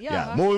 ya mo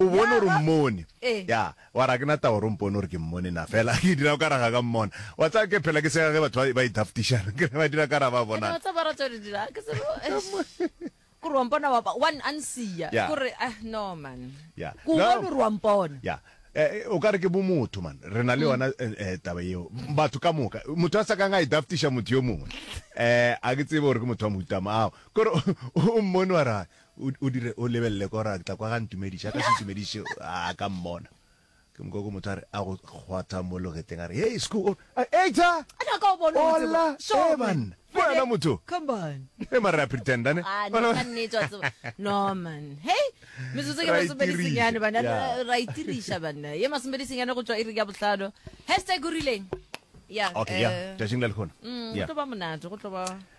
o bone gore mmone eh. ya wa ra ke na tao rompone gore ke mmone na fela ke dira ka raga ka mmona wa tsa ke phela ke sega ge batho ba idaftishana ke ba dira ka ra ba bona wa tsa ba ratsa di dira ke se ku rompona wa ba one ansia ku re ah no man ya ku ba lu rompona ya eh, eh, o ka re ke bomotho man re na le mm. yona eh, taba eo batho ka moka motho a sa kang a idaftisha motho yo mongwe um a ke tsebe gore ke motho wa moutama ao Ke gore o mmone wa re o dire o lebelele ka gore a tla kwa ga ntumediše a ka se ntumediše a ka mmona ke moka ko motho a re a go kgwatha mo logeteng a re hey school eita ola e banna ke wena motho e mare a pretenda ne ra itiriša banna ye masomedi senyane go tswa e re ya botlhano hashtag o rileng ya tšatšing la lekgona go tlo ba monate go tlo ba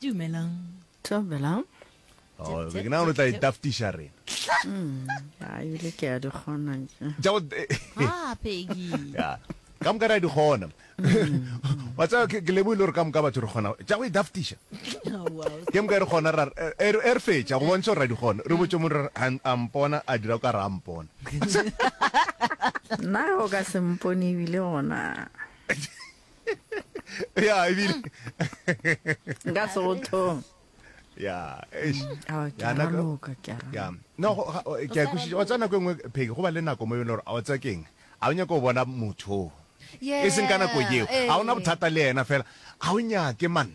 Dumelang. Dumelang. Oh, ke na o tla itaftisha rena. Hmm, ya e le ke a di gona. Ja o. Ah, Peggy. Ya. Ka mka ra di gona. Hmm. Wa tsa ke le bo ile re ka mka batho re gona. Ja go idaftisha. Oh, wow. Ke mka re gona ra er er fetsa go bontšha ra di gona. Re botse mo re a mpona a dira ka ra mpona. Na o ka se mpone bile gona. ya ebile nka sothong ya yana loka ke ara ya no ke a kushitsa wa tsana go engwe pheke go ba le nako mo yone gore a o tsa keng a o nyaka go bona motho e seng ka nako yeo a ona bothata le yena fela a o nyake man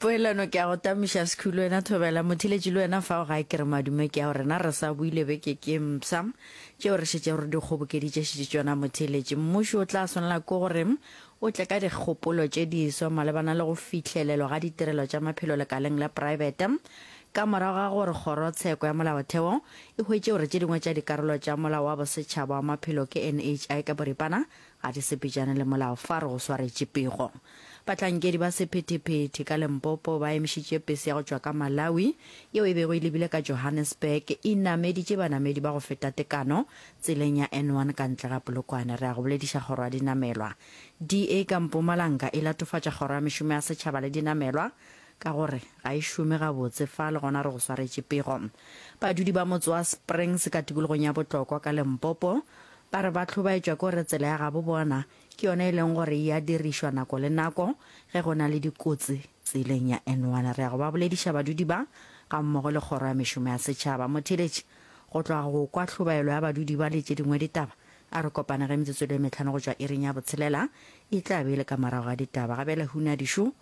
poelano ke a go tamiša sekhulu wena thobela mothiletši le wena fa o ga ke re madume ke ya gore na re sa buile beke ke mpsa tšeo re šetše gore di kgobokeditše šetše tšona mothiletši mmuši o tla swanela ke gore o tle ka dikgopolo tše diswa malebana le go fihlelelwa ga ditirelo tša maphelo lekaleng la poraebete ka morago ga gore kgorotsheko ya molaotheo e hwetše gore tše dingwe tša dikarolo tša molao wa bosetšhaba wa maphelo ke nhi ka boripana Ga di sepetšane le molao fa re go swaretše pego. Bahlankedi ba sephethephethe ka Limpopo ba emišitše pese ya go tšwa ka Malawi yeo e bego e lebile ka Johannesburg e nameditše banamedi ba go feta tekano tseleng ya N1 ka ntle ga Polokwane. Re a go bolediša kgoro ya dinamelwa, DA, ka Mpumalanga e latofatša kgoro ya mešomo ya setšhaba le dinamelwa ka gore ga e šome gabotse fa le gona re go swaretše pego. Badudi ba motse wa Springs ka tikologong ya Botlokwa ka Limpopo Ba re ba hlobaetšwa ke gore tsela ya gabo bona ke yona e leng gore ya dirišwa nako le nako ge go na le dikotsi tseleng ya N1. Re ya go ba bolediša badudi ba ga mmogo le Kgoro ya Mešomo ya Setšhaba. Motheeletši, go tloga go kwa hlobaelo ya badudi ba le tše dingwe ditaba, a re kopane ge metsotso e le e mehlano go tšwa iring ya botshelela e tla be e le ka morago ga ditaba. Gabjale Hunya Dišo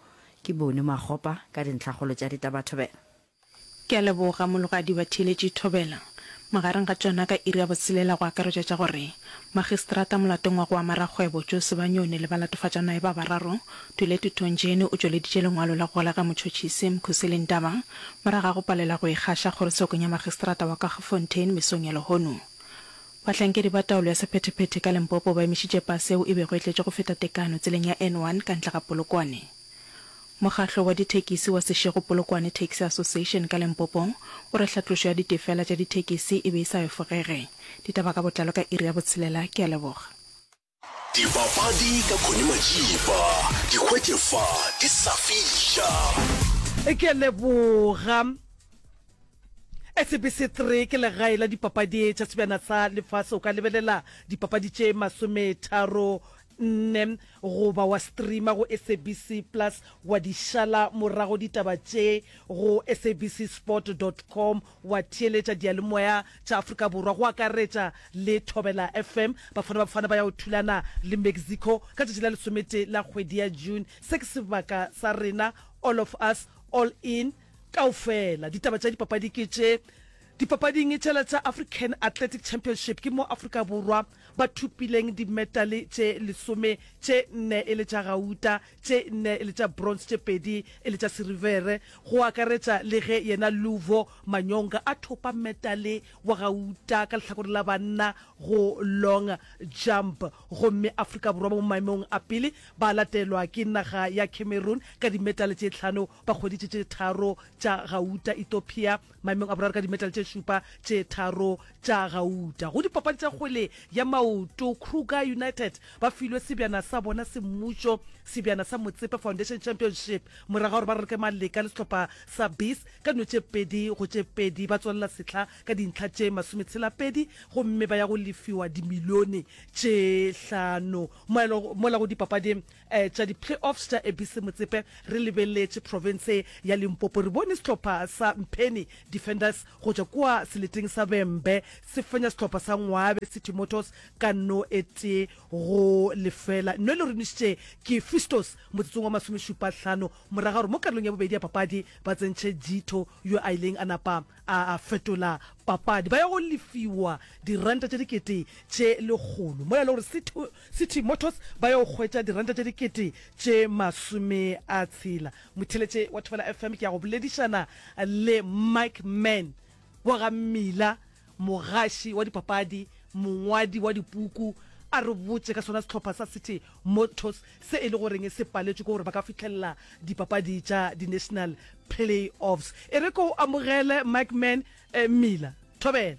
ke Bony Makgopa ka dintlhakgolo tša ditabathobela. Ke a leboga, Mologadi Batheeletši Thobela. Magareng ga tšona ka iri ya botshelela go akaretšwa tša gore, Magistrata molatong wa go ama rakgwebo Joe Sebanyoni le balatofatšwanae ba bararo, Tuletu Tonjeni o tšweleditše lengwalo la go golega motšhotšhisi, Mkhuseli Ndaba, morago ga go palela go ikgaša kgorotshekong ya magistrata wa Kagefontein mesong ya lehono. Bahlankedi ba taolo ya sephethephethe ka Limpopo ba emišitše pase yeo e bego e tletše go feta tekano tseleng ya N1 ka ntle ga Polokwane. Mokgahlo wa dithekisi wa Seshego Polokwane Taxi Association ka Limpopo o re hlatlošo ya ditefela tša dithekisi e be e sa efogege. Ditaba ka botlalo ka iri ya botshelela. Ke a leboga. Dipapadi ka Connie Majiba, di hwetše fa di sa fiša. Ke a leboga. SABC 3 ke legae la dipapadi tša sebjana sa lefase. O ka lebelela dipapadi tše masometharo nne goba wa streama go SABC plus wa di šala morago ditaba tše go sabcsport dot com wa theeletša diyalemoya tša Afrika Borwa go akaretša le Thobela FM. Bafana Bafana ba ya go thulana le Mexico ka tšatši la lesometee la kgwedi ya June. Se ke sebaka sa rena All of Us All In kaofela. Ditaba tša dipapadi ke tše. Dipapading tšela tša African Athletic Championship ke mo Afrika Borwa Ba thopileng dimetale tše lesome, tše nne e le tša gauta, tše nne e le tša bronze, tše pedi e le tša sirivere, go akaretša le ge yena Luvo Manyonga a thopa metale wa gauta ka lehlakore la banna go long jump. Gomme Afrika Borwa ba mo maemong a pele, ba latelwa ke naga ya Cameroon ka dimetale tše tlhano Ba kgweditše tše tharo tša gauta Ethiopia, maemong a boraro ka dimetale tše šupa tše tharo tša gauta. Go dipapadi tša kgwele ya maoto, Kruger United ba filwe sebjana sa bona semmušo, sebjana sa Motsepe Foundation Championship, morago ga gore ba raloke maleka le sehlopha sa Bis ka dino tše pedi go tše pedi. Ba tswalela sehla ka dintlha tše masometshela-pedi gomme ba ya go lefiwa dimilione tše hlano mola go dipapading Tša di-playoffs tša ABC Motsepe re lebeleletše profense ya Limpopo. Re bone sehlopha sa Mpheni Defenders go tšwa kua seleteng sa Vhembe se fenya sehlopha sa Ngwabe City Motors ka no e tee go lefela. No e loronišitše ke Fistos motsotsong wa masomešupa hlano morago ga gore mo karolong ya bobedi ya papadi ba tsentšhe Jitho yo a ileng a napa a fetola papadi. Ba ya go lefiwa diranta tše dikete tše lekgolo mola e le gore City City Motors ba yo hwetša diranta tše dikete tše masome a tshela. Motheletše wa Thobela FM ke ya go boledišana le Mike Man, bogammila, mogaši wa dipapadi, mongwadi wa dipuku, a re botše ka sona sehlopha sa City Motors se e le goreng se paletšwe ke gore ba ka fihlelela dipapadi tša di-national play-offs. E re ke go amogele Mike Man. Mmila, Thobela.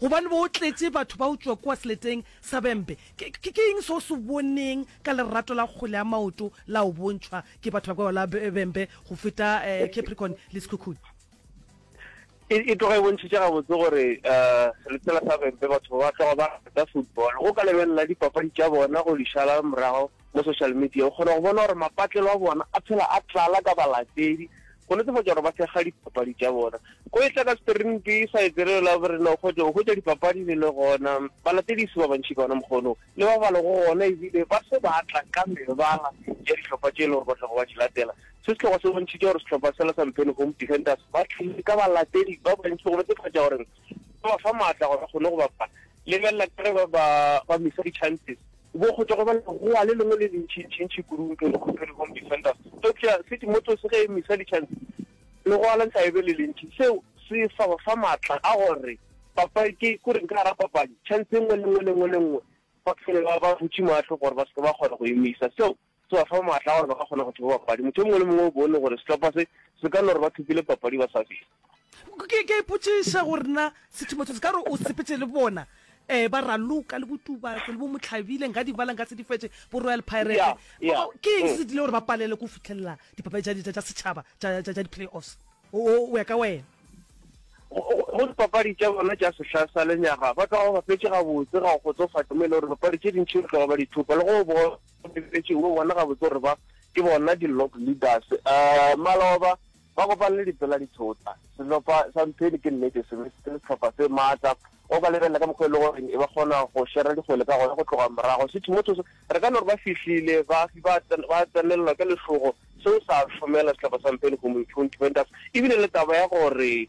Gobane bo tletše batho ba utswa kua seleteng sa bempe. Ke, ke, ke eng seo o se boneng ka lerato la kgwele ya maoto la o bontšhwa ke batho ba kua la be, bempe go feta eh, Capricorn le Sekhukhune? E, e tloga e bontšhitše gabotse gore eh, seletela sa bempe batho ba tloga ba rata football. Go ka lebelela dipapadi tša bona go di šala morago mo social media, o kgona go bona gore mapatlelo a bona a phela a tlala ka balatedi go netefatša gore ba sega dipapadi tša bona. Go etla ka Sperinpi sa etselelo la borena o kgotse go hwetša dipapadi di le gona, balatediši ba bantši ka ona mokgwa ono le ba ba lego gona ebile ba se ba tla ka mebala ya dihlopha tše e lego gore ba tlago ba di latela. Se se tlogo se bontšhitše gore sehlopha sela sa Mpheni Home Defenders ba tlile ka balatedi ba bantši go netefatša gore ba ba fa maatla gore ba kgone go bapala. Lebelela ka ge ba ba misa di-chances. Bokgotho go ba legowa le lengwe le lentšintšintši kudu nke le khupe le Home Defenders. Eupša se Timoteus ge e misa ditšhantsi, legowa la nka e be le lentši. Seo se sa ba fa matla a gore ba pake, ke reng, ka gara papadi, tšhantsi e nngwe le e nngwe le e nngwe le e nngwe. Ba fele ba ba butše mahlo gore ba se ke ba kgona go e misa. Seo Se ba fa maatla a gore ba ka kgona go thiba papadi. Motho yo mongwe le mongwe o bone gore sehlopha se se ka no re ba thopile papadi ba sa fihla. Ke a ipotšiša gore na sethumo se se ka re o sepetše le bona, um ba Raloka le Botubatse le Bomohlabile, nka di bala nka se di fetše, Boroyal Pirate. Ke eng se se dirile gore ba palelwe ke go fihlelela dipapadi tša setšhaba tša di-playoffs go ya ka wena? Go dipapadi tša bona tša sehla sa lenyaga ba tloga ba bapetše gabotse, ga go kgotsofatše mo e lego gore dipapadi tše dintši ba tloga ba di thopa le go bona. O lebeletše o bona gabotse gore ba ke bona di-log leaders. Um maloba ba kopane le dipela di thota. Sehlopha sa Mpheni ke nnete se be se le sehlopha se maatla. O ka lebelela ka mokgwa e le gore e ba kgona go šera dikgwele ka gona go tloga morago. Sithu Mothoso re ka no re ba fihlile ba ba ba tsenelelwa ke lehlogo. Seo sa šomela sehlopha sa Mpheni Community Fountain Vendors e bile le taba ya gore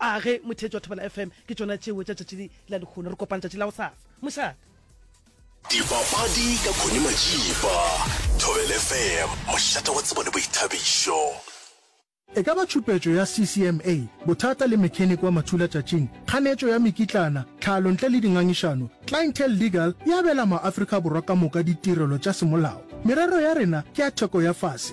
a ge motheetsi wa thobela fm ke tsona tšeo tša tšatši la lekgono re kopana tšatši la go sasa mošate dipapadi ka khone majiba thobel fm mošate wa tsebo le boithabišo E ka ba tšhupetšo ya CCMA, bothata le mechanic wa mathula tšatšing, kganetšo ya mekitlana, tlhalo ntle le dingangišano, Clientele Legal e abela ma-Afrika Borwa ka moka ditirelo tša semolao. Merero ya rena ke ya theko ya fase.